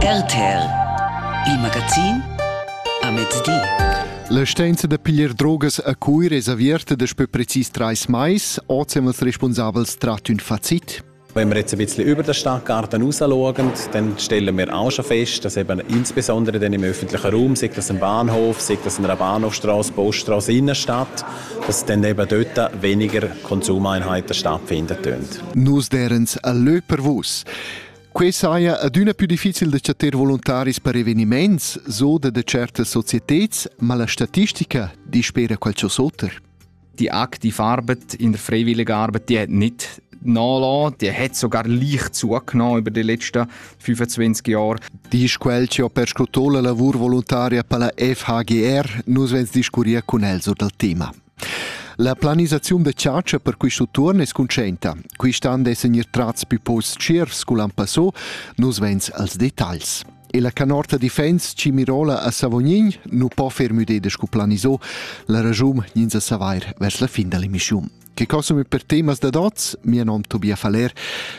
RTL Il magazin a mezdi. La stanza da piglier drogas a Cuir es averta daspö precis trais mais. Oz haben els responsabels trat ün facit. Wenn wir jetzt ein bisschen über den Stadtgarten rausschauen, dann stellen wir auch schon fest, dass eben insbesondere dann im öffentlichen Raum, sei das ein Bahnhof, sei das eine Bahnhofstraße, Poststraße, Innenstadt, dass dann eben dort weniger Konsumeinheit der stattfinden tönt. Nus derens a lö per vus. Quei saja adüna più difficil da chattar voluntaris per eveniments, so da de certas societats, ma la statistica di spera qualcosa oter. Die aktive Arbeit in der freiwilligen Arbeit, die hat nicht nachlassen, die hat sogar leicht zugenommen über die letzten 25 Jahre. Die ist quel che ho perscruto la lavur volontaria per la FHGR, nus vens discurrir con el sur dal tema. La planisaziun da chatscha per quist utuon es cuntscienta. Quist an dessan gnir trats pü posts tschiervs scu l'an passò, nus vains als detagls. E la canorta difens Cimirola a Savognin nu po fer müdeda scu planisò, la ragiun gnins a savair vers la fin da l'emischiun. Che cosum per temas da dots, mia nom Tobia Faller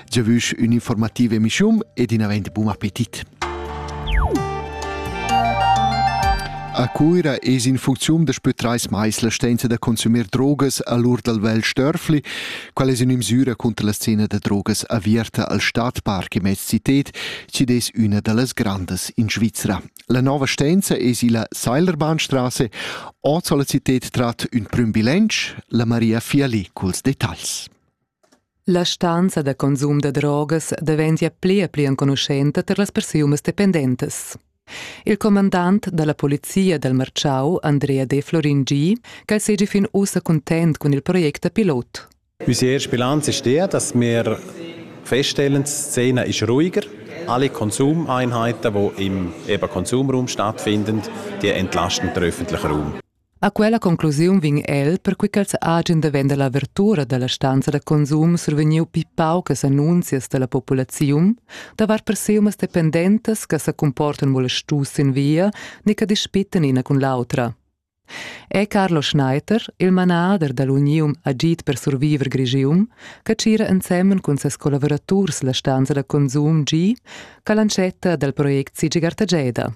Giavüsch ün'informativa emischium ed in avent bun appetit. A Cuira es in funcziun daspö trais mais la stenza da consumer drogas a l'ur dal vel Störfli. Qual es üna misüra conter la scena da drogas averta al Stadtpark immez cited, chi'd es üna da las grandas in Svizra. La nova stenza es illa Seilerbahnstrasse. Ot la cited trat ün prüm bilanc, la Maria Fiali culs detagls. La stanza da consum da drogas daventia pli e pli enconuschenta tar las persunas dependentas. Il comandant da la polizia dal Marciau, Andrea De Florin G, ch'el seigi fin ussa cuntent cun il project da pilot. Unsere erste Bilanz ist die, dass wir feststellen, die Szene ist ruhiger. Alle Konsumeinheiten, die im Konsumraum stattfinden, die entlasten den öffentlichen Raum. A quella conclusiun vegn el, perquei ch'els hagen da vender la avertura dalla stanza da consum survegniu pli paucas annunzias dalla populaziun davart perseumas dependentas che sa comportan molestus sin via ni che dispittan ina cun l'autra. È Carlo Schneiter, il manader dall'uniun Agit per surviver Grigium, che tgira ensemen cun ses collaboraturs la stanza da consum G, calantschetta dal project Sigi Gartageda.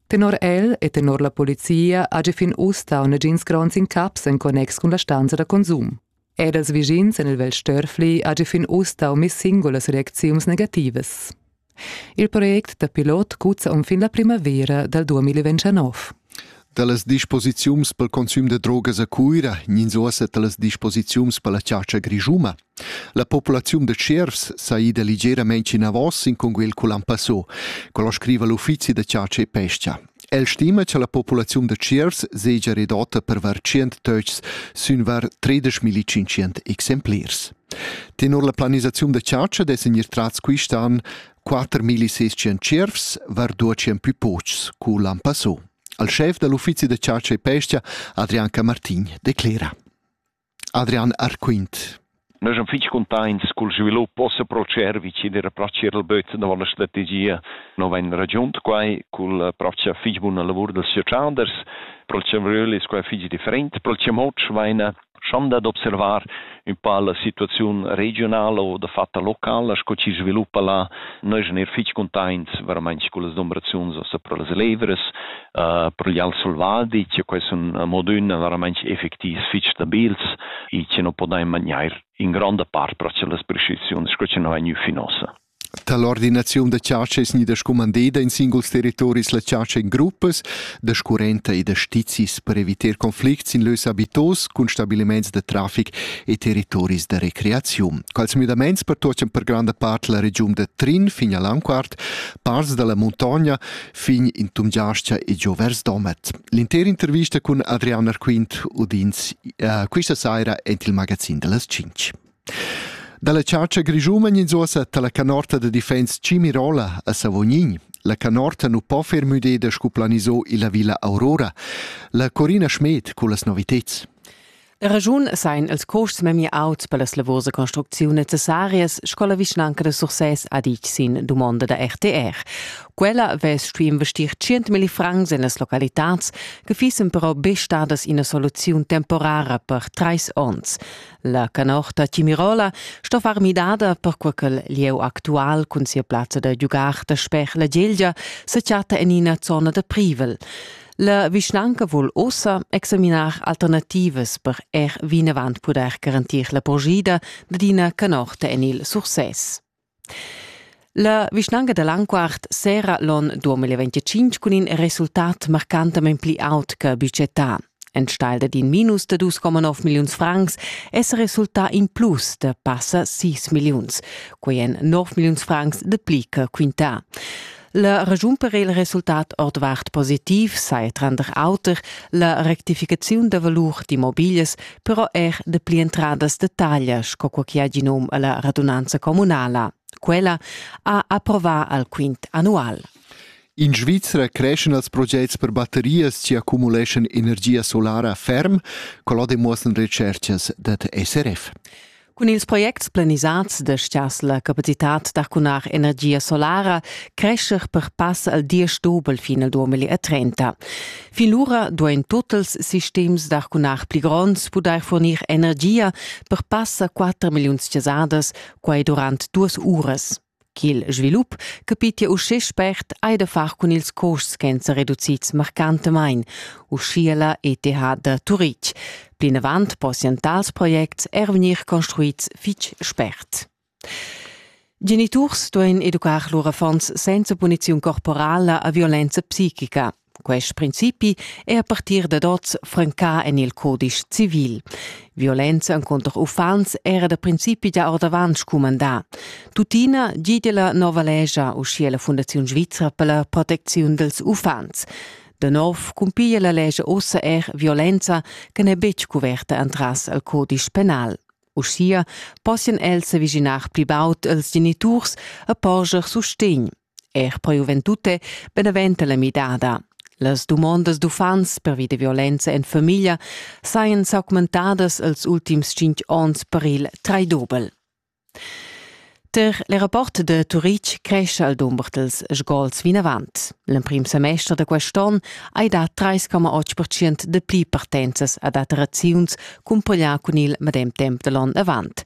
Tenor el e tenor la polizia hagi fin uss dau negins gronds incaps en connex cun la stanza da consum. Ed els vischins en il Vel Störfli hagi fin uss dau mis singulas reacziuns negativas. Il project da pilot cuzza um fin la primavera dal 2029. Dallas disposiziuns pel consum de drogas a Cuira gnins uossa talas disposiziuns per la chatscha grischuma. La populaziun da tschiervs sa ida ligeramein enavos sin cunguel cul ampasso, quello scriva l'uffizi da chatscha e pesca. El stima che la populaziun da tschiervs segia redotta per var 100 töchs sün var 13.500 exemplars. Tenor la planisaziun da chatscha dessen ir trats quist'an 4.600 tschiervs var 200 più pochs cu l'ampasso. Al chef dall'uffizi da chatscha e pesca Adrian Camartin declera. Adrian arquint. Nus am fich cuntaints cul svilup possa proceder vicin ir a pratcher il böt davo la strategia. No vain ragiunt quai cul pratcher fich buna lavur dals socialders. Pro'l chambriöl es quai fich different. Pro'l chamoç vaina schanda d'observar ün pa la situaziun regionala o dafatta locala sco chi sviluppa là. Nus neir fich cuntaints veramaints cullas dumbraziuns ossa pro las levras, per gli al selvadi che quels sun modun veramente effectivs fich stabils e che non podain magnair in gronda part pro las prescriziuns sco che non ha gnü fin ossa. Dall'ordinaziun da chatscha es gnida scumandeda in singuls territoris la chatscha in gruppas da scurrenta e da stizis per evitar conflicts in lös habitos cun stabiliments da trafic e territoris da recreaziun. Quals müdaments pertuochan per granda part la regiun da Trin fin a Lanquart, parts dalla muntogna fin in tumgiascha e giò vers Domat. L'inter intervista cun Adrian Arquint udins uh, questa saira en il magazin delles 5. Dalla chargia grischuman ins ossa la canorta de defense Cimirola a Savognin. La canorta nu po fer müdeda scu planiso illa Villa Aurora. La Corina Schmed cu las novitets. Da raschun sain els costs memia auts per las lavurs da construcziun necessarias sco la vischnanca da Sursès ha ditg sin dumonda da RTR. Quella vess stuì investir 100.000 francs en las localitads che fissen però be stadas ina soluziun temporara per trais onns. La canorta Timirola sto far midada perquai che il lieu actual cun sia plazza da giugar da sper la Gelgia se chatta en ina zona da privel. La vischnanca vul ossa examinar alternativas per er vinavant pudair garantir la purgida d'ina canorta en il Sursès. La vischnanca da Lanquart sera l'on 2025 cun in resultat marcantament pli aut che budgetà. Enstagl dad in minus da 2,9 milliuns francs è resultà in plus da passa 6 milliuns. Quei èn 9 milliuns francs de pli che quintà. La regiun per il resultat ordvart positiv sai tranter auter la rectificaziun da valur d'immobiglias, però er de pli entradas de taglia, sco quo chi ha gi num alla radunanza comunala. Quella ha approvà al quint annual. In Svizra creschan els projects per batterias che accumuleschan energia solara ferm, collo demuossan recerchas dad SRF. Cun ils projects planisads destias la capacitat d'arcunar energia solara crescher per pass al diesch dobel fin al 2030. Fin lura duain tutts sistems d'arcunar pli gronds pudair fornir energia per pass a 4 milliuns chasadas quai durant duas uras. Ch'il svilup capitia uschè spert hai da far cun ils custs ch'èn sa reducids marcantamain, uschia la ETH da Turitg. Plinavant possian tals projects er vegnir construids fitg spert. Geniturs duain educar lur affons senza puniziun corporala a violenza psichica, Quest principi è a partir dad oz francà en il codice civil. Violenza contro uffants era da principi già ordavant scumandà. Tuttina gide la nova legia, uschia la Fundazione Svizra per la protezione dels uffants. Da nov cumpiglia la legge ussa er violenza che n'è betg coverta entras al codice penal. Uschia possian els s'aviginar pli baud als geniturs e porscher sustegn. Er po juventute beneventa la midada. Las dumondas d'uffants pervi da violenza en famiglia sajan s'augmentadas els ultims cinq onns per il traidobel. Ter le rapport de Turitg cresce al dumber dels sgols vinavant. L'emprim semester da quest'on hai dat 3,8% de pli partenzas a dataziuns cumpaglià cun il medem temp da l'on avant.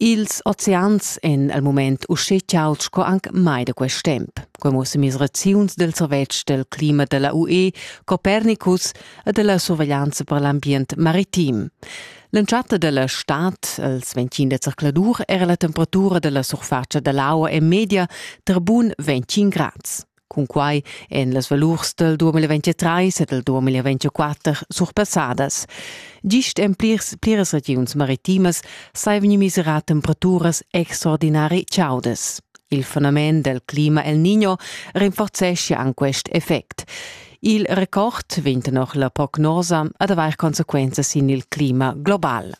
Ils oceans èn al mument uschè chauds sco anc mai da quest temp. Quai mussa misraziuns del servetsch del clima da la UE, Copernicus e della surveglianza per l'ambient maritim. L'entschatta della stad, als 25 de zercladur, era la temperatura della surfatscha dell'aua è media tra bun 25 grads. Cunquai èn las valurs dal 2023 e dal 2024 surpassadas. Gist en plirs, pliras regiuns maritimas sai vegnir miserà temperaturas extraordinari chaudas. Il fenomen del clima El Niño rinforzeschia anche quest effect. Il record venta noch la prognosa ad avair conseguenze sin il clima global.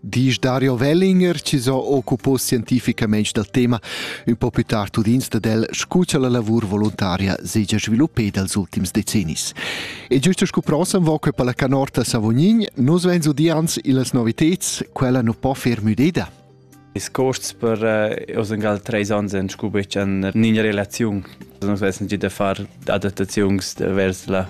Disch Dario Wellinger, chi s'ho occupo scientificamaing dal tema, ün po più tard udins dad el, scu cha la lavur voluntaria s'hegia sviluppeda els ultims decennis. E giusto scu prossam vo que per la canorta Savognin, nus vains udians illas noviteds, quella nu po fer müdeda. Ils costs per uh, oz ingal treis ans en scu betg en nina relaziun. Nus vessen gi da far adattaziuns vers la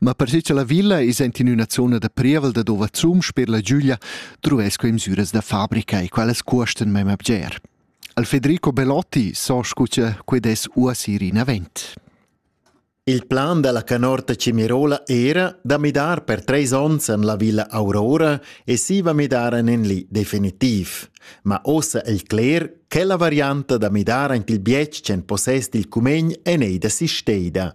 Ma per che la villa is ent in üna zona da prievel da dova zum sper la Giulia truesco in süras da fabrica e quelles cuosten mema bger. Al Federico Belotti so scuccia que des uasir in avent. Il plan della canorta Cimirola era da midar per treis ons en la villa Aurora e si va midar en en li definitiv. Ma ossa el cler che la varianta da midar ant il bietg en possess dil cumegn en ei da si steida.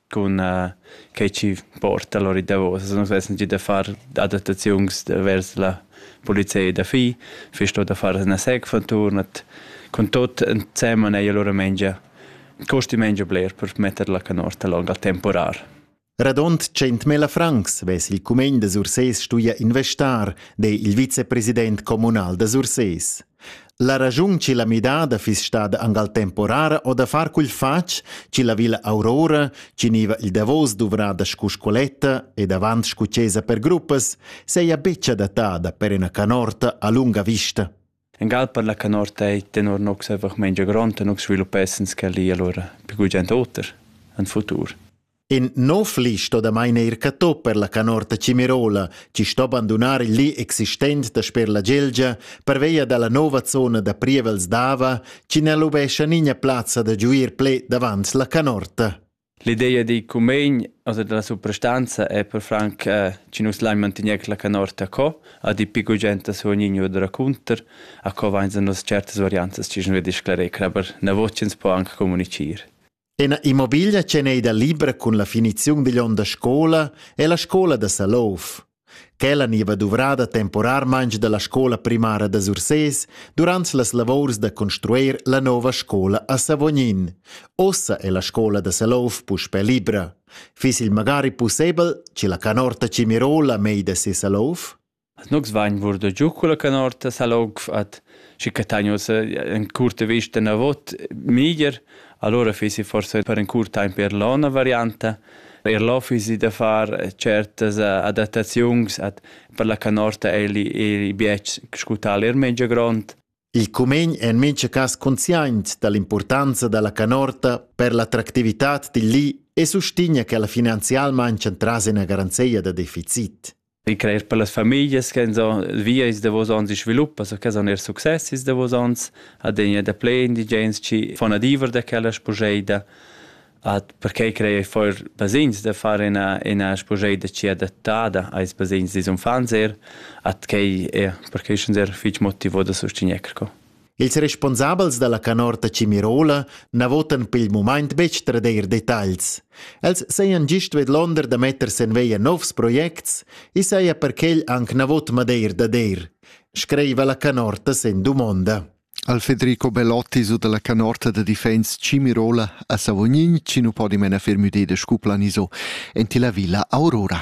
cun uh, quei chi porta lor i davos. Nus vessen gi da far adattaziuns vers la polizia da fi, fist da far una sec von turnat con tot ensemen ei allora mengia costi mengia bler per metter la canorta long al temporar. Radont 100.000 francs vess il cumegn da Sursés stuia investar, de il vicepresident communal da Sursés. La raschun chi l'ha midada fiss stada anc al temporara o da far quel fatg chi la villa Aurora, chi gniva il davos duvrada scu scoletta e davant scu chesa per gruppas, seja betg adattada per üna canorta a lunga vista. In gal per la canorta ei tenor nus einfach mengia gronda, nus sviluppessens quella allora più gugent oter, en futur. In nov li sto damain eir catto per la canorta Cimerola, chi sto bandunar il li existent dasper la Gelgia pervia da la nova zona da prievels d'Ava, chi n'ha lubescha nigna plazza da giuir ple davant la canorta. L'ideia di cumegn, also della suprastanza è per franc eh, ci nus lai mantegner la canorta co, a di pico genta su ognigno da racunter, a co vain nos certas varianzas ci nus disclare, aber na vocens po anche comunicir. Ina immobiglia tscheneda libra cun la finiziun digl onn da scola è la scola da Salouf. Quella niva duvrada temporarmaintg dalla scola primara da Sursés durant las lavors da construeir la nova scola a Savognin. Ossa è la scola da Salouf puspe libra. Fiss il magari pussebel, ci la canorta Cimirola mei da se Salouf? As nogs vain vurdo giù culla canorta sa'l onf at schi cattain uossa in curta vista inavot meglier. Alura fiisi forsa per ün curt taimp eir là üna varianta. Eir là fiisi da far tschertas adattaziuns at per la canorta eirli eirli bietsch scu tal eir mincha grond. Il cumegn è in mincha cas consciaint da l'importanza da la canorta per l'attractività dil li e sustegna che la finanzialmain tras ina garanzia da deficit. I crer per las famiglias che so via is davos ons i sviluppa, so che son er success is davos ons, adegna da ple indigens chi fon adiever da quella spugeida, at perquei crei foir basegns da far ina ina spugeida chi adattada ais basegns dis unfants er, at quei er perquei sun er fich motivo da sustegner co. Ils responsabels dalla canorta Cimirola na votan per il mumaint betg tradeir detagls. Els sajan gist vedlonder da metter sen veia novs projects e saja perquel anc na vot madeir da deir, screiva la canorta sen dumonda. Al Federico Bellotti su dalla canorta da defense Cimirola a Savognin, ci nu po di mena fermüdede scuplaniso, enti la villa Aurora.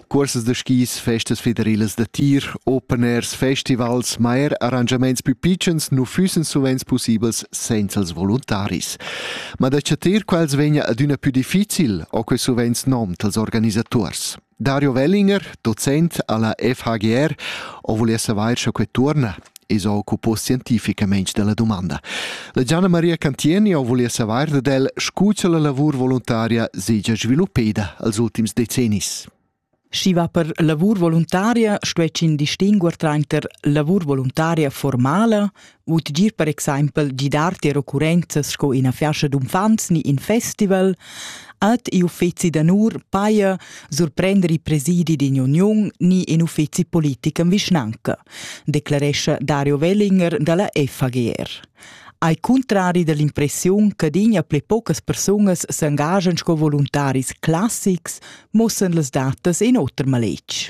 Cursas da skis, festas federilas da tir, open airs, festivals, ma er arrangiaments più pitschens nu füssen suvent pussibels senza els voluntaris. Ma da chatir quels vegna adüna più difficil, ho que suvent nom dals organisaturs. Dario Wellinger, docent alla FHGR, ho volià savair scha que tuorna. e s'occupo scientificamein dalla domanda. La Gianna Maria Cantieni ho volia savar dad el, scu cha la lavur voluntaria segia sviluppeda als ultims decennis. Schi va per lavur voluntaria stuecin distinguer trainter lavur voluntaria formala u tgir per exempel gidar tier occurrenzas sco ina fiascha d'unfants ni in festival, Ad i uffeci d'onur paja surprender i presidi d'in uniun ni in uffeci politic en vischnanca, declarescha Dario Wellinger dalla FAGR. Ai cuntrari dall'impressiun che dinja pli paucas persunas s'engagen sco voluntaris classics, mussan las datas in oter maletg.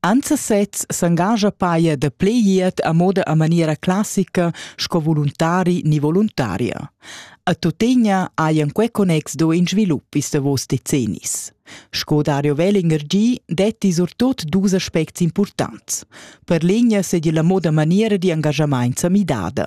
Anza sez s'engascha paia da play iert a moda a maniera classica sco voluntari ni voluntaria. A tuttegna hajan quei connex do in svilup ils davos decennis. Sco Dario Wellinger gi, detti surtut dus aspects importants. Per l'egna sedi la moda maniera di engagamaint sa midada.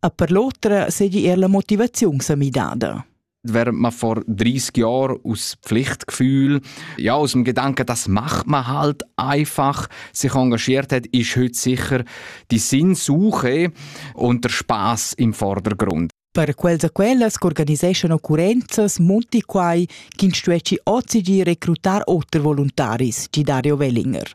e per l'otra seigi er la motivaziun sa midada. Wer man vor 30 Jahren aus Pflichtgefühl, ja aus dem Gedanken, das macht man halt einfach, sich engagiert hat, ist heute sicher die Sinnsuche und der Spaß im Vordergrund. Per quels e quellas che organiseschan occurrenzas munti quai ch'in stuesci ozi di recrutar oter voluntaris, di Dario Wellinger.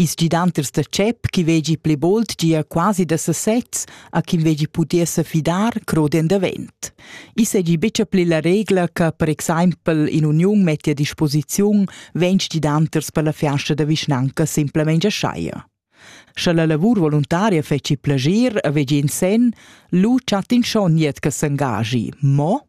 Ils gidanters da tschep chi vegi pli bold gia quasi da sesezs a chi vegi pudir se fidar crodien davent. I segi bicha pli la regla che per exaimpel in uniun metti a disposiziun ventg gidanters per la fiasta da vischnanca simplemente schaia. Sche la lavur voluntaria feci plagir a vegi in sen, lu chat in schon niet che s'engagi, mo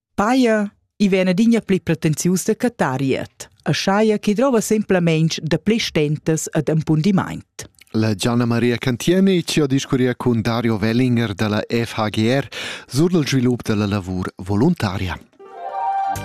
Paja, i vegn adina pli pretensius da cattar riet, aschia che drova semplamein dapli stentas ed impundimaint. La Gianna Maria Cantieni ci ha discurria cun Dario Wellinger dalla FHGR sur il svilup dalla lavur voluntaria.